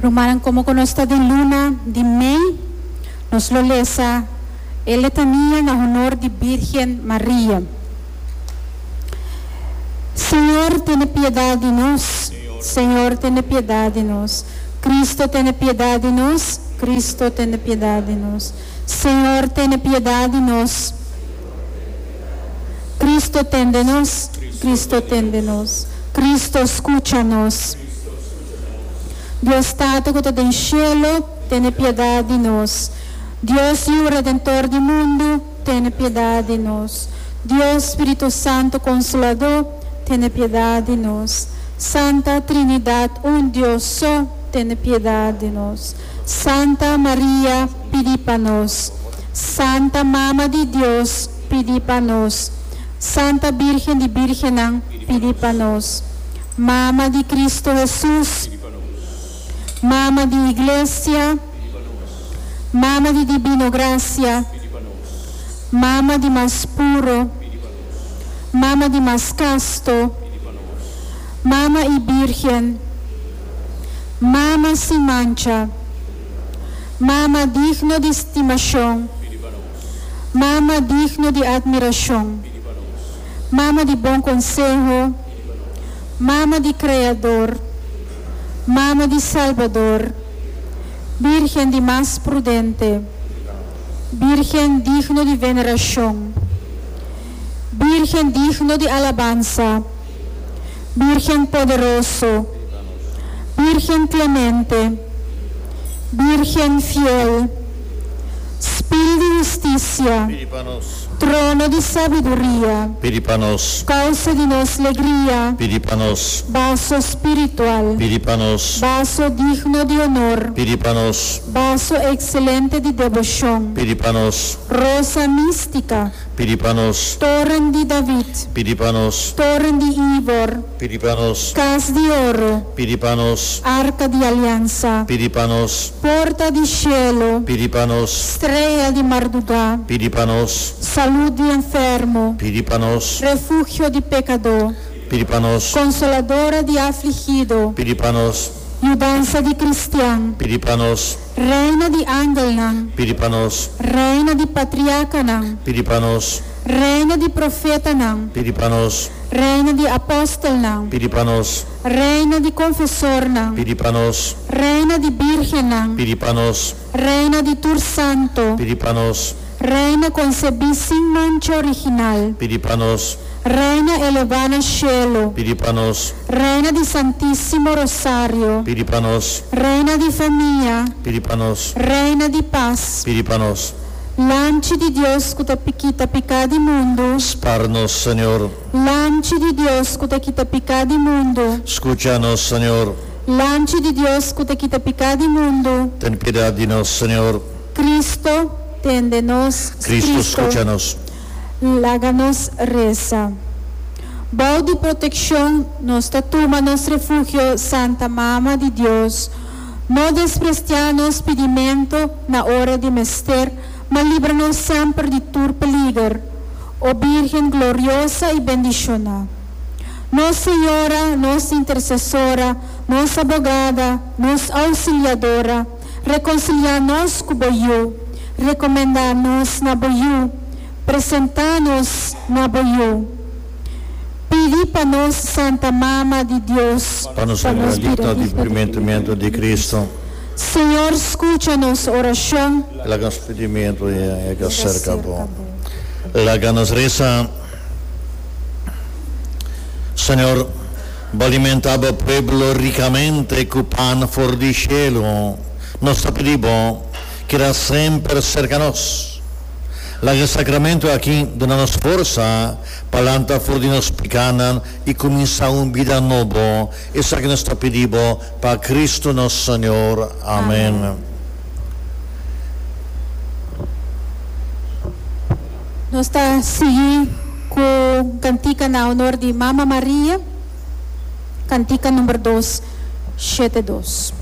Rumannan, komo ku nos ta den luna di mei, nos lo lesa e letania na honor di Bírgen Maria. Señor, tene piedat di nos, Señor, tene piedat di nos. Kristu, tene piedat di nos, Kristu, tene piedat di nos. Señor, tene piedat di nos. Cristo tende nos, Cristo tende nos, Cristo scucha nos. Dios Tata cu ta den cielo, tene piedad di nos. Dios Yu Redentor di mundo, tene piedad di nos. Dios Spiritu Santo Consolador, tene piedad di nos. Santa Trinidad un Dios so, tene piedad di nos. Santa Maria pidi pa nos Santa Mama di Dios pidi pa nos Santa Birgen di Birgennan pidi pa nos Mama di Cristo Hesus Mama di Iglesia Mama di Dibino Gracia Mama di mas puro Mama di mas kasto Mama i Birgen Mama sin mancha. Mama digno di stimashon. Mama digno di admirashon. Mama di bon konseho. Mama di Kreador. Mama di Salbador. Bírgen di mas prudente. Bírgen digno di venerashon. Bírgen digno di alabansa. Bírgen poderoso, Bírgen klemente, Bírgen fiel, Spil di hustisia, Trono di sabiduria, Kousa di nos legria, Baso spiritual, Baso digno di onor, Baso ekselente di deboshon, Rosa místika. Pidi pa nos. Toren di David. Pidi pa nos. Toren di Ivor. Pidi pa nos. Kas di oro. Pidi pa nos. Arka di aliansa. Pidi pa nos. Porta di shelu. Pidi pa nos. Strea di mardugá. Pidi pa nos. Salut di enfermo. Pidi pa nos. Refugio di pekadó. Pidi pa nos. Konsoladora di afligido. Pidi pa nos. Yudansa di kristian. Pidi pa nos. Reina di angelnan. Pidi pa nos. Reina di patriarcanan. Pidi pa nos. Reina di profetanan. Pidi pa nos. Reina di apostelnan. Pidi pa nos. Reina di confesornan. Pidi pa nos. Reina di birgennan. Pidi pa nos. Reina di tur santo. Pidi pa nos. Reina concebí sin mancha original. Pidi pa nos. Reina elevá na cielo. Pidi pa nos. Reina di Santísimo Rosario. Pidi pa nos. Reina di famia. Pidi pa nos. Reina di pas. Pidi pa nos. Lamchi di Dios cu ta kita picá di mundu. Spar nos, Señor. Lamchi di Dios cu ta kita picá di mundu. Scucha nos, Señor. Lamchi di Dios cu ta kita picá di mundu. Ten piedad di nos, Señor. Cristo, tende nos. Cristo, scucha nos. Laga nos reza. Bou di proteccion nos ta tuma nos refugio Santa Mama di Dios. No desprestia nos pidimento na ora di mester, ma libra nos semper di tur peliger, O Birgen gloriosa y bendiciona. Nos Señora, nos Intercesora, nos Abogada, nos Auxiliadora. Rekonsiliá nos ku bo yu. Rekomendá nos na bo yu. Presentá nos na bo yu. Pidi pa nos Santa Mama di Dios. Pa nos bira digno di purimentamentu di Kristu. Señor, skucha nos orashon. Laga nos pidimentu yega serka bo. Laga nos resa, Señor. Bo alimenta bo pueblo ricamente cu pan for di cielo. Nos ta pidi bo, keda semper cerca nos. Laga e sacramento aki duna nos forsa pa lanta for di nos picanan y cuminsa un bida nobo. Esaki nos ta pidi bo pa Cristo nos Señor. Amen. Nos ta sigui cu cantica na honor di Mama Maria, cantica number dos, shete dos.